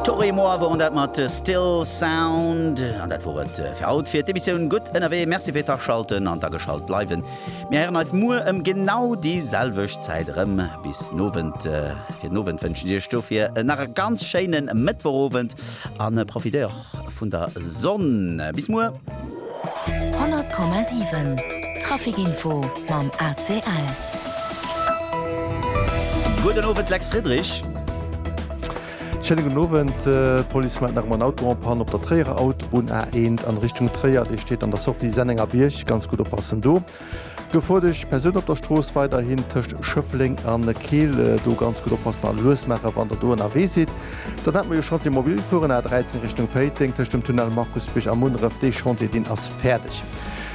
Toi et moi woren dat mat Still Sound an dat wor et fir haut fir d'Emissioun Gutt ënnerwee. Merci fir d'Aschalten an d'Ageschalt bleiwen. Mir héieren eis muer ëm genau déi selwecht Zäit erëm. Bis den Owend. Fir den Owend wënschen ech Iech dofir nach e ganz schéine Mëttwochowend a profitéiert och Vun der Sonn. Bis muer. 100,7 Traficinfo mam ACL. Gudde Owend Lex Friedrich. Schéine gudden Owend. D'Police mellt nach ëmmer en Auto en Panne op der Tréierer Autobunn A1 an Richtung Tréier. Dee steet an der Sortie Sennengerbierg, ganz gutt oppassen do. Gefoardesch Persoun op der Strooss weiderhin tëscht Schëffleng a Keel. Do ganz gutt oppassen a lues maachen, wann Der do ënnerwee sidd. Dann hat mer jo Chantier mobil fueren, A 13 Richtung Péiteng tëscht dem Tunnel Markusbierg a Munneref. Dee Chantier, deen ass fäerdeg.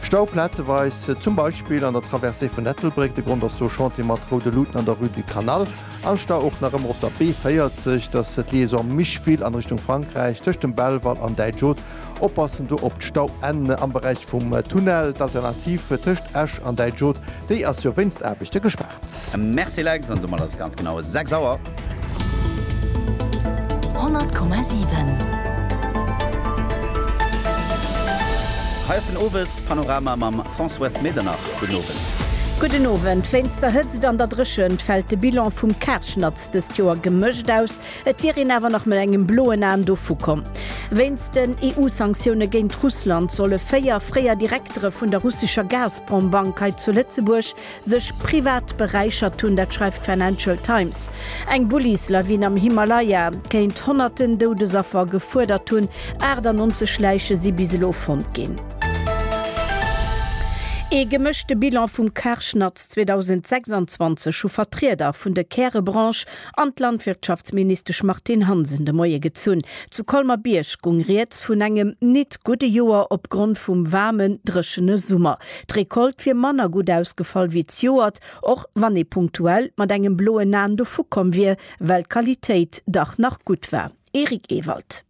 Stau plazeweis, zum Beispill an der Traversée vun Ettelbréck. De Grond ass do Chantier mat roude Luuten an der Rue du Canal. An Stau och nach ëmmer op der B40, dat ass d'Liaison Micheville an Richtung Frankräich tëscht dem Belval an Däitsch Haut. Oppassen do op d'Stauenn am Beräich vum Tunnel. D'Alternativ tëscht Esch an Däitschod, déi ass jo wéinst Aarbechte gespaart. Merci Lex, an domat ass et ganz genau 6 Auer. 100,7. Hei ass den Owespanorama mam Françoise Medernach. Gudden Owend. Gudden Owend. Wéinst der Hëtzt an der Dréchent fält de Bilan vum Karschnatz dëst Joer gemëscht aus. Et wier een awer nach mat engem bloen Aen dovu komm. Wéinst den EU-Sanktioune géint Russland solle véier fréier Direktere vun der russescher Gazprom-Bank hei zu Lëtzebuerg sech privat beräichert hunn. Dat schreift d'Financial Times. Eng Bullislawin am Himalaya kéint honnerten Doudesaffer gefuerdert hunn. 98 Läiche si bis elo fonnt ginn. Ee gemëschte Bilan vum Karschnatz 2026 hu Vertrieder vun de Kärebranche an d'Landwirtschaftsministesch Martine Hansen de Moie gezunn. Zu Colmer-Bierg gung rieds vun engem nit gudde Joer opgrond vum waarmen, dréchene Summer. D'Recolte wier manner gutt ausgefall wéi d'Joert, och wann ee punktuell mat engem bloen Aen dovukomm wier, well d'Qualitéit dach nach gutt war. Eric Ewald.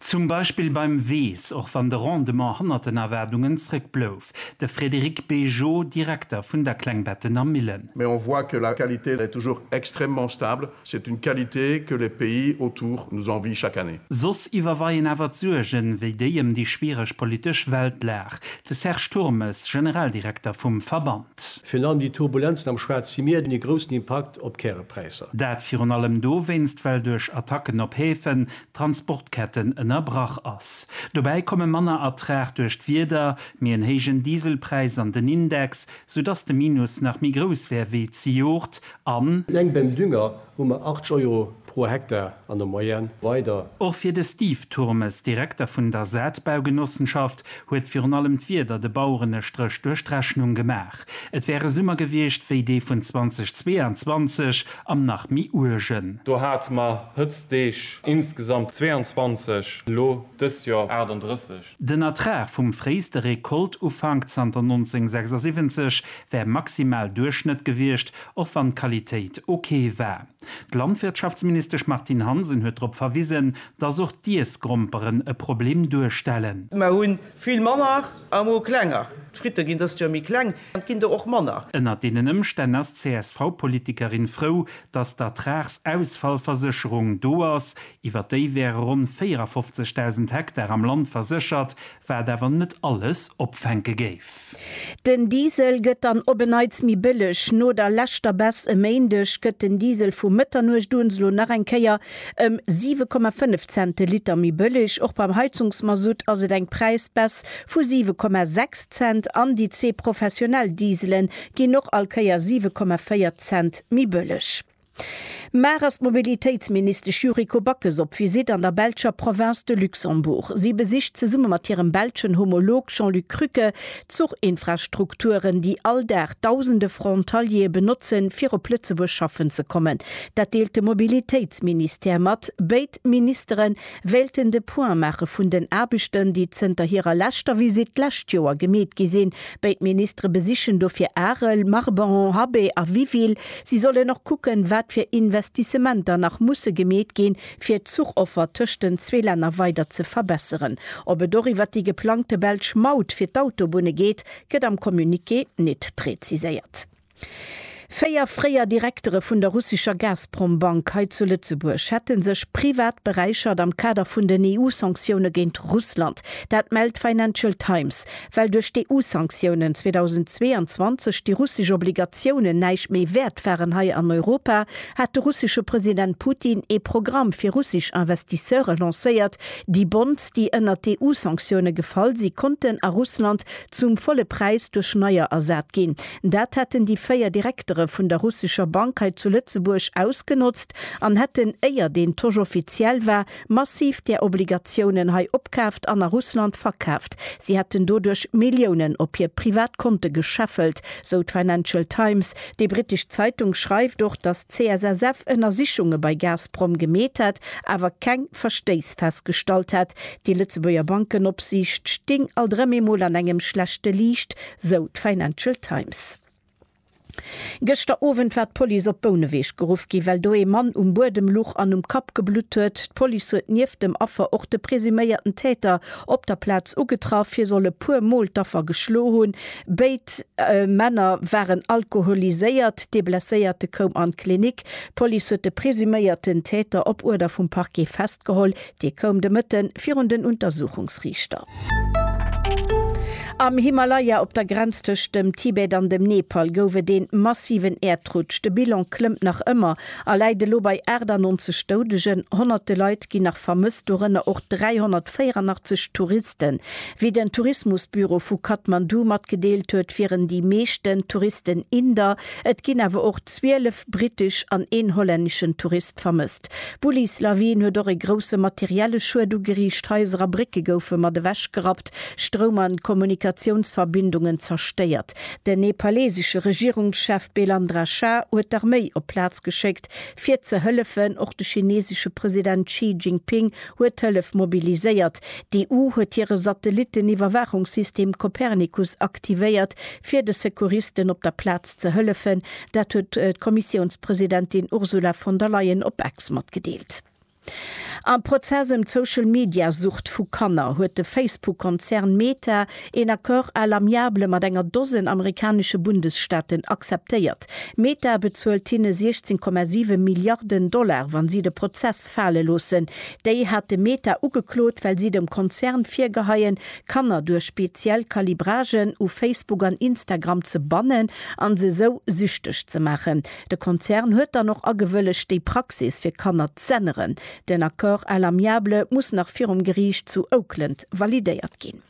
Zum Beispill beim Weess, och wann de Rendement hannert den Erwaardungen zréck blouf. De Frédéric Bégeot, Direkter vun der Klengbettener Millen. Mais on voit que la qualité est toujours extrêmement stable, c'est une qualité que les pays autour nous envient chaque année. Soss iwwerweien awer d'Suergen, wéi déi ëm déi schwiereg politesch Weltlag. De Serge Turmes, Generaldirekter vum Verband. Virun allem déi Turbulenzen am Schwaarze Mier hunn e groussen Impakt op d'Kärepräisser. Dat virun allem dowéinst, well duerch Attacken op Häfen Transportketten ënnerbrach ass. Dobäi komme manner Ertrag duerch d'Wieder, méi en héijen Dieselpräis an den Index, soudass de Minus nach méi grouss wär wéi zejoert an. Eleng beim Dünger hu mer 80 Euro pro Hektar an der Moyenne. Weider. Och fir de Steve Turmes, Direkter vun der Saatbaugenossenschaft, huet virun allem d'Wieder de Baueren e Stréch duerch d'Rechnung gemaach. Et wär e Summer gewiescht wéi dee vun 2022 am nach méi uergen. Do hate mer Hëtztdeeg insgesamt 22, elo dëst Joer 38. Den Ertrag vum fréiste Rekoltufank zanter 1976 wär maximal Duerchschnëtt gewiescht, och wann d'Qualitéit ok war. D'Landwirtschaftsministesch Martine Hansen huet drop verwisen, dass och d'Iessgromperen e Problem duerstellen. Mer hu vill manner Amo klenger. D'Fritte ginn dëst Joer méi kleng an et ginn der och manner. Ënnert deenen Ëmstänn ass d'CSV-Politikerin frou, datt d'Ertragsausfallversécherung do ass. Iwwer déi wäre ronn 54.000 Hektar am Land verséchert, wat awer net alles opfänke géif. Den Diesel gëtt dann op en Neits méi bëlleg. No der leschter Baisse e Méindeg gëtt den Diesel vu Mëtternuecht un elo nach eng Kéier Ëm 7,5 Cent de Liter méi bëlleg. Och beim Heizungsmasutt ass et eng Präisbaisse vu 7,6 Cent an déi zwee professionell Diesele ginn och all Kéier 7,4 Cent méi bëlleg. Mar ass d'Mobilitéitsministesch Yuriko Backes op Visitt an der belscher Province de Luxembourg. Si besicht zesumme mat hirem belschen Homolog Jean-Luc Krücke d'Zuchinfrastrukturen, déi all Dag dausende Frontaliere benotzen, fir op Lëtzebuerg schaffen ze kommen. Dat deelt de Mobilitéitsministère mat. Béid Ministere wéilten de Point maache vun den Aarbechten, déi zënter hirer leschter Visitt d'lescht Joer gemeet gi sinn. Béid Ministere besichen dofir Arel, Marbehan, Habay a Wiville. Si sollen och kucken, wat fir Investissementer nach musse gemeet ginn, fir d'Zuchoffer tëscht den zwee Länner weider ze verbesseren. Ob et och iwwert déi geplangte belsch Maut fir d'Autobunne geet, gëtt am Communiqué nit präziséiert. Véier fréier Direktere vun der russescher Gazprom-Bank hei zu Lëtzebuerg hätte sech privat beräichert am Kader vun den EU-Sanktioune géint Russland. Dat mellt d'Financial Times. Well duerch d'EU-Sanktiounen 2022 déi russesch Obligatiounen näischt méi wäert waren hei an Europa, hat de russesche President Putin ee Programm fir russesch Investisseure lancéiert. Déi Bonds, déi ënnert d'EU-Sanktioune gefall si konnten a Russland zum volle Präis duerch neier ersat ginn. Dat hätten déi véier Direktere vun der russescher Bank hei zu Lëtzebuerg ausgenotzt an hätten, éier deen Tosch offiziell war, massiv där Obligatiounen hei opkaaft an a Russland verkaaft. Si hätten doduerch Milliounen op hir privat Konte gescheffelt, sou d'Financial Times. Déi brittesch Zeitung schreift och, datt d'CSSF Ënnersichunge bei Gazprom gemeet hätt, awer keng Verstéiss festgestallt hätt. Déi Lëtzebuerger Bankenopsiicht sting alt erëm eemol an engem schlechte Liicht, sou d'Financial Times. Gëschter Owend war d'Police op Bouneweg geruff ginn, well do ee Mann um Buedem luch an um Kapp geblutt huet. D'Police huet nieft dem Affer och de presuméierten Täter op der Plaz ugetraff. Hie soll e puer Mol d'Affer geschloe hunn. Béid Männer waren alkoholiséiert. Dee Blesséierte koum an d'Klinik. D'Police huet de presuméierten Täter op Uerder vum Parquet festgeholl. Dee koum de Mëtte virun den Untersuchungsriichter. Am Himalaya, op der Grenz tëscht dem Tibet an dem Nepal, gouf et ee massiven Äerdrutsch. De Bilan klëmmt nach ëmmer a läit elo bei 98 Doudegen. Honnerte Leit ginn nach vermësst, dorënner och 384 Touristen. Wéi den Tourismusbüro vu Kathmandu matgedeelt huet, wieren déi meeschten Touristen Inder, et ginn awer och 12 brittesch an een hollänneschen Tourist vermësst. D'Bullislawin huet och e grousse materielle Schued ugeriicht, Haiser a Brécke goufe mat ewech gerappt, Stroum a Kommunikatiounsverbindungen zerstéiert. Den nepalesesche Regierungschef Belandra Shah huet d'Arméi op d'Plaz geschéckt, fir ze hëllefen. Och de chinesesche President Xi Jinping huet Hëllef mobiliséiert. D'EU huet hire Satellitten-Iwwerwaachungssystem Copernicus aktivéiert, fir de Secouristen op der Plaz ze hëllefen. Dat huet d'Kommissiounspresidentin Ursula von der Leyen op Ex matgedeelt. Am Prozess ëm d'Social-Media-Sucht vu Kanner huet de Facebook-Konzern Meta een Accord à l'amiable mat enger Dosen amerikanesche Bundesstaaten akzeptéiert. Meta bezuelt hinne 16,7 Milliarden Dollar, wa si de Prozess fale loossen. Déi hate Meta ugeklot, well si dem Konzern virgeheien, Kanner duerch speziell Calibragen u Facebook an Instagram ze bannen an se esou süchteg ze maachen. De Konzern huet dann och agewëllegt déi Praxis fir Kanner z'änneren. Den Accord à l'amiable muss nach virum Geriicht zu Oakland validéiert ginn.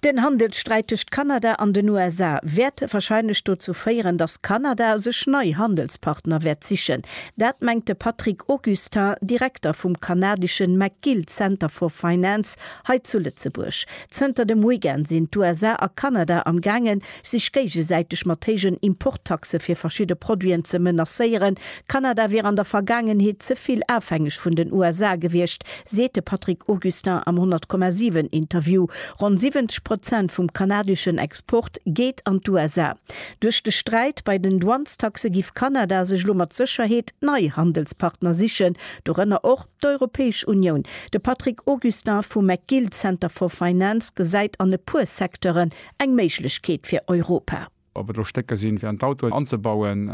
Den Handelssträit tëscht Kanada an den USA wäert warscheinlech dozou féieren, datt Kanada sech nei Handelspartner wäert sichen. Dat mengt de Patrick Augustin, Direkter vum kanadeschen McGill Center for Finance Hei zu Lëtzebuerg. Zënter dem Weekend sinn d'USA a Kanada am gaangen, sech géigesäiteg mat héijen Importtaxe fir verschidde Produiten ze menacéieren. Kanada wier an der Vergaangenheet ze vill afhängeg vun den USA gewiescht, seet de Patrick Augustin am 100,7 Interview. Ronn 70 Prozent vum kanadeschen Export geet an d'USA. Duerch de Sträit bei den Douanestaxe giff Kanada sech elo mat Sécherheet nei Handelspartner sichen, dorënner och. D'Europäesch Unioun, De Patrick Augustin vum McGill Center for Finance gesäit an e puer Secteuren eng Méiglechkeet fir Europa. Ob et elo Stécker sinn, fir an d'Autoen anzebauen,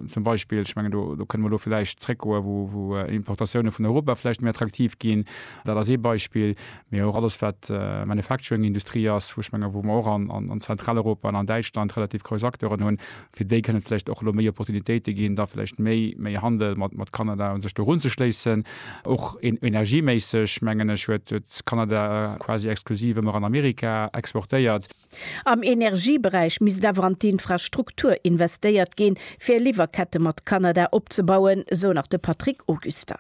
zum Beispill, ech mengen, do kënne mer elo vläicht zréckgoen, wou Importatioune vun Europa vläicht méi attraktiv ginn, dat ass ee Beispill, mee och alles, wat Manufacturing-Industrie ass, wou ech menge wou mer och an Zentraleuropa an an Däitschland relativ grouss Acteuren hunn. Fir déi kënne vläicht och elo méi Opportunitéite ginn, da vläicht méi, méi Handel mat Kanada u sech do erunzeschléissen. Och energieméisseg, mengen ech, huet Kanada quasi exklusiv ëmmer an Amerika exportéiert. Am Energieberäich misst awer an d'Infrastruktur investéiert ginn, fir Liwwerkette mat Kanada opzebauen, esou nach de Patrick Auguster.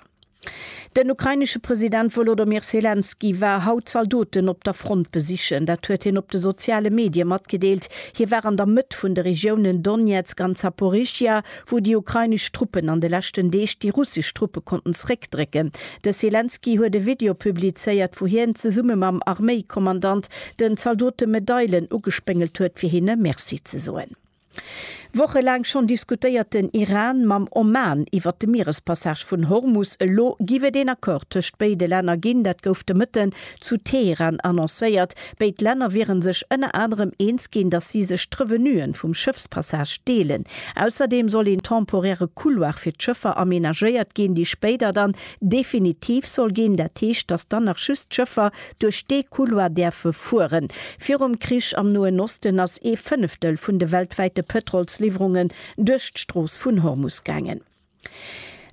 Den ukrainesche President Wolodomir Selenskyj war haut Zaldoten op der Front besichen. Dat huet hien op de soziale Medie matgedeelt. Hie war an der Mëtt vun de Regiounen Donezk an Zaporizhzhia, wou déi ukrainesch Truppen an de leschten Deeg déi russesch Truppe konnten zeréckdrécken. De Selenskyj huet e Video publizéiert, wou hien zesumme mam Arméikommandant den Zaldote Medailen ugespéngelt huet, fir hinne Merci ze soen. Wochelaang schonn diskutéiert den Iran mam Oman iwwert de Mierespassage vun Hormus. Elo giff et een Accord tëscht béide Länner ginn. Dat gouf de Mëtten zu Teheran annoncéiert. Béid Länner wieren sech ënner anerem eens ginn, datt si sech d'Revenuen vum Schëffspassage deelen. Ausserdeem soll een temporäre Couloir fir d'Schëffer amenagéiert ginn, déi spéider dann definitiv soll ginn. Dat heescht, datt dann nach just d'Schëffer duerch dee Couloir däerfe fueren. Virum Krich am Noen Osten ass ee Fënneftel vun de weltwäite Pëtrolsliwwerungen duerch d'Strooss vun Hormus gaangen.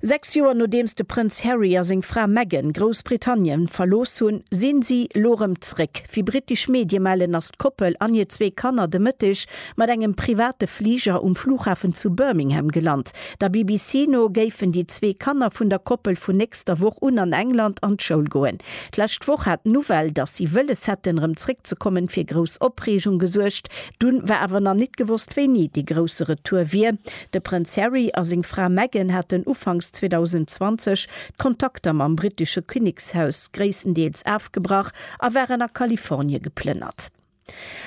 Sechs Joer nodeems de Prënz Harry a seng Fra Meghan Groussbritannien verlooss hunn, sinn si lo rëm zréck. Wéi brittesch Medie mellen, ass d'Koppel an hir zwee Kanner de Mëtteg mat engem private Fliger um Flughafen zu Birmingham gelant. Der BBC no géifen déi zwee Kanner vun der Koppel vun nächster Woch un an England an d'Schoul goen. D'lescht Woch hat d'Nouvelle, datt si wëlles hätten, rëm zréckzekommen, fir grouss Opreegung gesuergt. Dunn war awer nach nit gewosst, wéini dee grousse Retour wier. De Prënz Harry a seng Fra Meghan haten ufanks 2020 d'Kontakter mam brittesche Kinnekshaus gréisstendeels afgebrach a waren a Kalifornie geplënnert.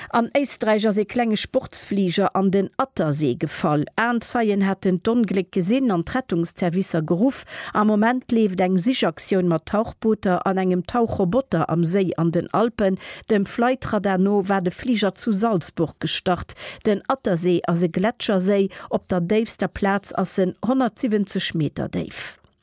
An Éisträich ass ee klenge Sportsfliger an den Attersee gefall. Aenzeien haten d'Ongléck gesinn an d'Rettungsservicer geruff. Am Moment leeft eng Sichaktioun mat Tauchbooter an engem Tauchroboter am Séi an den Alpen. Dem Flightradar no war de Fliger zu Salzburg gestart. Den Attersee ass e Gletscherséi. Op der déifster Plaz ass en 170 Meter déif.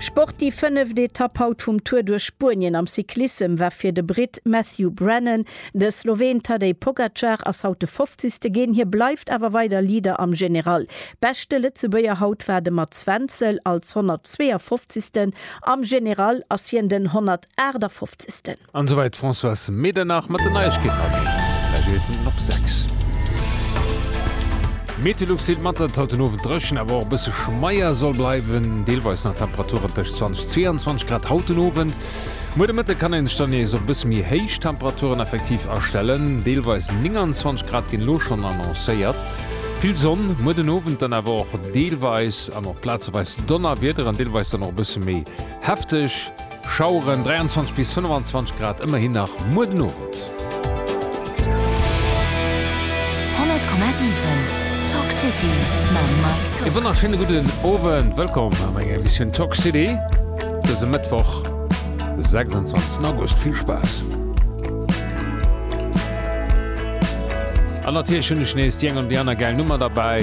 Sport, Déi fënneft Etapp haut vum Tour duerch Spuenien am Cyclissem war fir de Britt Matthew Brennan. De Sloween Tadej Pogacar ass haut de Fofzegste ginn, hie bleift awer weider Leader am General. Beschte Lëtzebuerger haut war de Mats Wenzel, als 152. Am General ass hien den 158. An souwäit d'Françoise Medernach mat den Neiegkeeten a mir räiche fir Minuten op 6. Meteolux deelt mat, datt et haut den Owend dréchen, awer och e bësse schmeier soll bleiwen. Deelweis nach Temperaturen tëscht 20 a 22 Grad haut den Owend. Muer de Mëtte kann ee sech dann nees op e bësse méi héich Temperaturen effektiv astellen. Deelweis 29 Grad ginn elo schonn annoncéiert. Vill Sonn, muer den Owend dann awer och deelweis an och plazeweis Donnerwiederen, deelweis dann och e bësse méi hefteg. Schaueren, 23 bis 25 Grad, ëmmerhin nach muer den Owend. 100,7 Talk City mam Mike Tock. E wonnerschéine gudden Owend, wëllkomm am enger Emissioun Talk City dëse Mëttwoch, de 26 August. Vill Spaass! An natierlech hunn ech nees déi eng oder déi aner gäil Nummer derbäi.